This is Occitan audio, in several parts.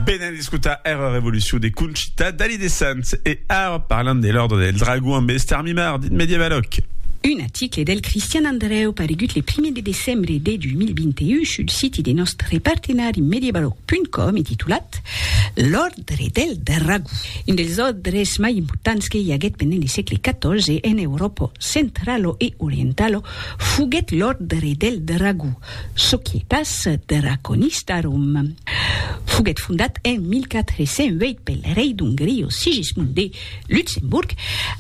Venen d'escotar era revolucion de Conchita Dalí de Sants e ara parlam de l'Òrdre del Dragon amb Esther Mimard, dit Medievaloc. Un article del Cristian Andrèu paregut le primièr de decembre de 2021 sul siti de nòstre partenari medievaloc.com e titulat L'Òrdre del Dragon, un dels òrdres mai importants que i aguèt pendent le sègle XIV en Euròpa centralo e orientalo foguèt l'Òrdre del Dragon, Societas Draconistarum foguèt fondat en 1408 pel rei d'Ongria Sigismund de Luxemburg,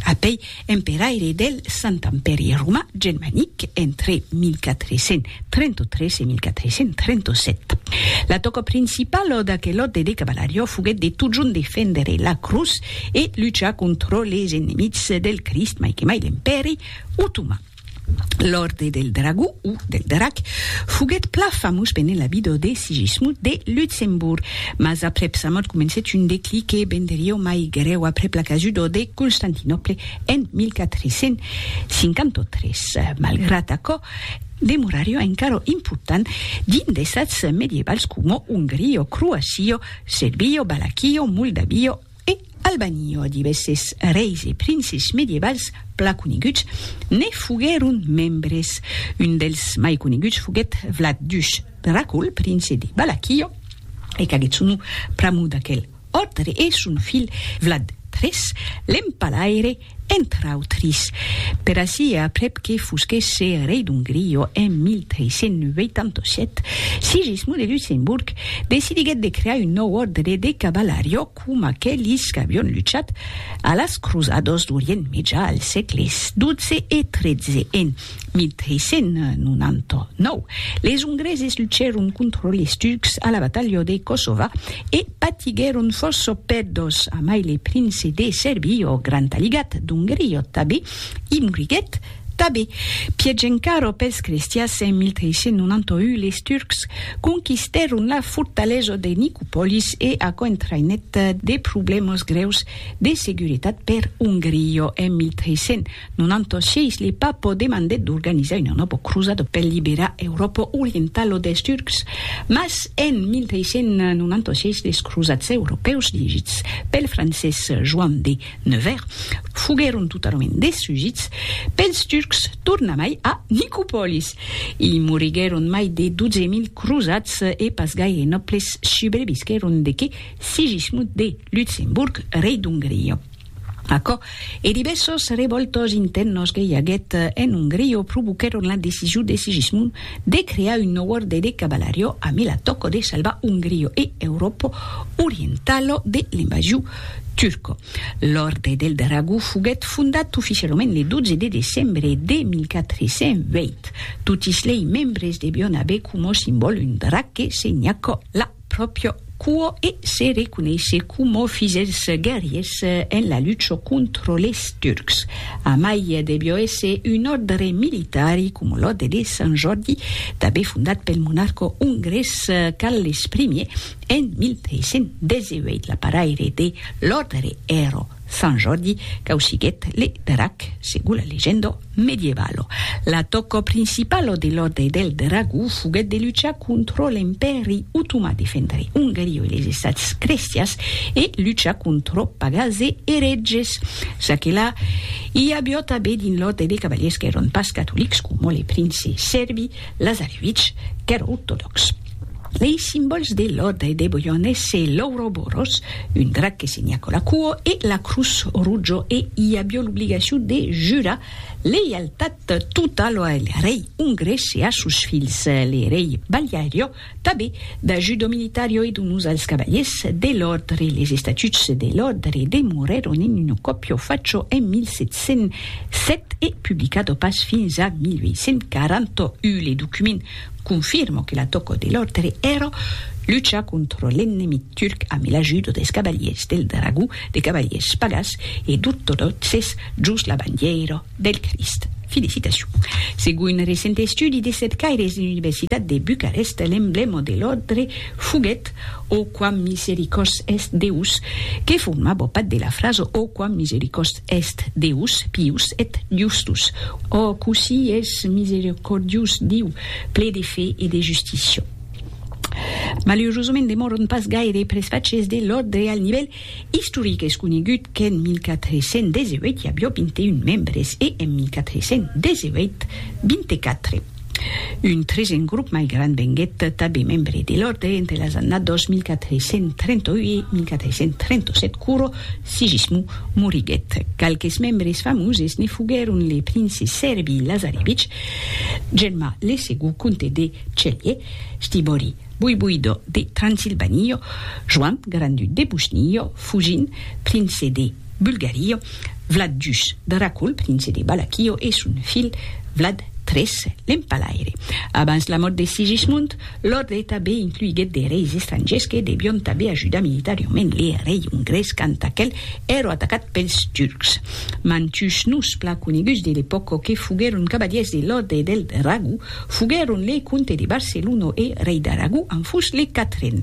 apèi emperaire del Sant Empèri Romà Germanic entre 1433 e 1437. La tòca principala d'aquel òde de cavalariá foguèt de totjorn defendre la crotz e luchar contra les enemics del Crist, mai que mai l'Empèri Otoman. L'Òrde del Dragó, o del Drac, foguèt plan famós pendent la vida de Sigismund de Luxemborg, mas aprèp sa mòrt comencèt un declic que venderió mai grèu aprèp la casuda de Constantinòple en 1453. Malgrat aquò, demorarió encara important dins d'estats medievals coma Ongria, Croacia, Serbia, Valaquia, Moldavia, E Albani ò divèsses reis e princes medievals pla coneguts ne foguèron membres. Un dels mai coneguts foguèt Vlad Dush Dracul, prince de Balaquio, e qu'agèt son nom pr'amor d'aquel òrdre, e son filh Vlad iii, l'empalaire, entre autris, per ací e aprèp que fosquèsse rei d'Ongria en 1387, Sigismond de Luxemborg decidiguèt de crear un nòu òrdre de cavalariá coma aquelis qu'avián luchat a las crosadas d'Orient Mejà al sègle xii e xiii en 1399, les Ongreses luchèron contra les Turcs a la batalha de Kosova e patiguèron fòrça pèrdas, amai le prince de Serbie, ò Grand Aligat d'Ongria tabé, i moriguèt tabé. Pièch encara pels crestias, en 1391 les Turcs conquistèron la fortalesa de Nicopolis e aquò entraïnèt de problèmas grèus de seguretat per Ongria en 1300. Non anto sièis li pas po demandèt d'organizar una nòbo crosada per liberar Euròpa orientala dels Turcs, mas en 1396 les crosats europèus dirigits pel francés Joan de Nevers foguèron totalament destrugits pels Turcs tornamai a Nicopòlis. I moriguèron mai de 12.000 crosats e pas gaire nòbles subrevisquèron de que Sigismund de Lutzemburg, rei d'Ongria. Aquò e divèssos revòltas intèrnas que i aguèt en Ongria provoquèron la decision de Sigismund de crear un nòu òrde de cavalaria amb la tòca de salvar Ongria e Euròpa orientala de l'invasion turca. L'Òrde del Dragó foguèt fondat oficialament le 12 de decembre de 1420. Totis lei membres devián aver coma simbòl un drac que senhaca la. pròpria cua e se reconeisse coma fils dels guerriers en la lucha contra les Turcs. Amai devió èsser un òrdre militari, coma l'òrdre de Sant Jòrdi, tanben fondat pel monarca ongrés Carles Ier en 1318. L'aparaire de l'òrdre èra Sant Jordi causiguèt le drac, segon la legenda medievalo. L'atòca principala de l'Òrdre del Dragó foguèt de luchar contra l'Empèri Otomà, defendre Ongaria e les Estats crestians e luchar contra pagans e eretges. Ça que la, i aviá tanben dins l'Òrdre de cavaliers qu'èran pas catolics, coma le prince sèrbi Lazarevich, qu'èra ortodòx. Lei simbòls de l'Òrdre de Boyone se l'Ouroboros, un drac que se nha cola cuo, e la Crutz Rutjo e i avió l'obligacion de jurar leialtat totalo al rei ongrés e a sos filhs, le rei Baliario, tabé da judo militario e donós als cavaliers de l'Òrdre. Les estatuts de l'Òrdre demorèron en un còpio facho en 1707 e publicado pas fins a 1841. Le document Confirmo que la tòco de l'òrdre èra luchar contra l'ennemit turc amb l'ajuda des cavaliers del dragó, de cavaliers pagàs e d'ortodòxes jos la bandièira del Crist. Felicitacion. Segon un recent estudi de cercaires de l'Universitat de Bucarest, l'emblèma de l'òrdre foguèt O quam misericors est Deus, que forma bopat de la frasa O quam misericors est Deus, pius et justus, O cossí es misericordius Diu, ple de fe e de justícia. Malurosament demòron pas gaire presfachés de l'òrdre al nivèl Istoric es conegut qu'en 1418 i avió 21 membres e en 1418, 24. Un tresen grop mai grand venguèt tabé membre de l'òrdre entre las annados 1438 e 1437 quoro Sigismund moriguèt. Qualques membres famoses ne foguèron le prince Serbi Lazarevich, Germà le segond comte de Celje, Stibori, Boiboido de Transilvanio, Joan Grandu de Bushnio, Fujin, prince de Bulgario, Vlad Jus de Racul, prince de Balakio, e son filh Vlad tres, l'empalaire. Abans la mòrt de Sigismund, l'òrdre tanben incluiguèt de reis estrangiers que devion tanben ajudar militariament le rei ongrés quand aquel èra atacat pels turcs. Mantuns noms plan coneguts de l'epòca que foguèron cavalièrs de l'òrdre del Dragó, Foguèron le comte de Barcelona e rei d'Aragó en fus le quatren,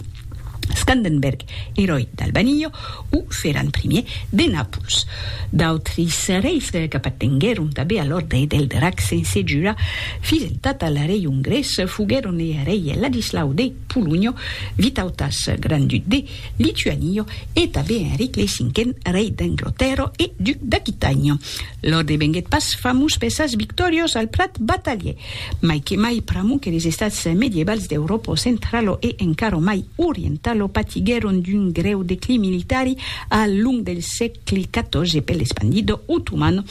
Scandenberg, eròi d'Albanio, o Ferran Primièr de Nàpols. D'autris reis qu'apartenguèron tanben a l'òrdre del Drac sense jurar fideltat al rei ongrés foguèron le rei Ladislau de Polonha, Vitautas, grand-duc de Lituania, e tanben Enric le Cinquen, rei d'Anglotèrra e duc d'Aquitània. Lor devenguèt pas famós per sas victòrios al plat batalhier, mai que mai pr'amor que les estats medievals d'Euròpo centralo e encara mai orientalo patiguèron d'un grèu declin militari al long del sègle xiv per l'espandido otoman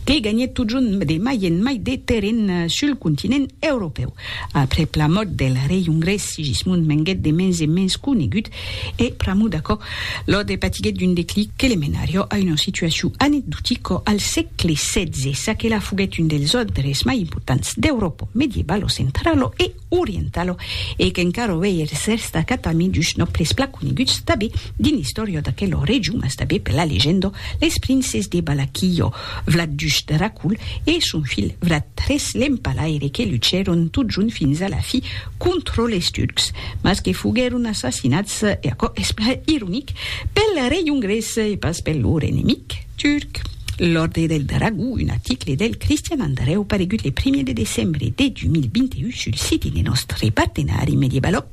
que ganhèt totjorn de mai en mai de terren sul continent europèu. Aprèp la mòrt del rei ongrés Sigismund venguèt de mens en mens conegut E pr'amor d'aquò, Lode patiguèt d'un declic que le menarió a una situacion anecdotica al sègle setze, ça que la foguèt un dels òdres mai importants d'Euròpa medievalo centralo e orientalo e qu'encara uèi es destacat amid dus nòbles plan coneguts tanben dins l'istòria d'aquela region mas tanben per la legenda, les princes de Balaquillo. Vlat Duch de Racul e son filh Vlat tres l'Empalaire que luchèron totjont fins a la fi contra les Turcs, mas que foguèron assassinats, e aquò es plan ironic, pel rei ongrés e pas per lor enemic turc. L'Òrdre del Dragó, un article del Cristian Andrèu paregut le primièr de decembre de 2021 sul site de nòstre partenari Mediebaloc.